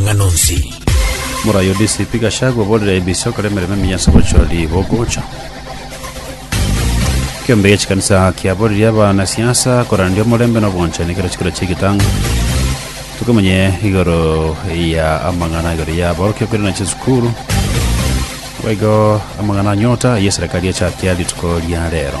amang'ana onsi. Murayi o DCP Gachagua oborire IEBC okore emeremo emiya ase ogochora ribogocha. Ekeombe gie chikanisa kiaboririe abanasiasa korandia omorembe na obwanchani ekero chikura chia egetango. Tokomenye igoro ya amang'ana igoro ya aborokia kweri na chisukuru. Boigo amang'ana anyota ye serikali echakia rituko ria rero.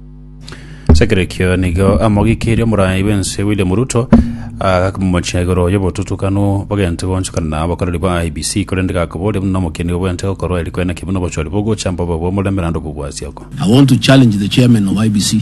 Ase ekero ekio nigo amogikeirie omorai bw'ense William Ruto agamomochia igoro y'obotutukanu bogente goonchokana na abakoreri ba IEBC korende gakoboria buna omokiani obwate gokorwa eri kwena ki buna obochori bogocha mbobe obw'omorembe naende obobwasio. I want to challenge the chairman of IEBC.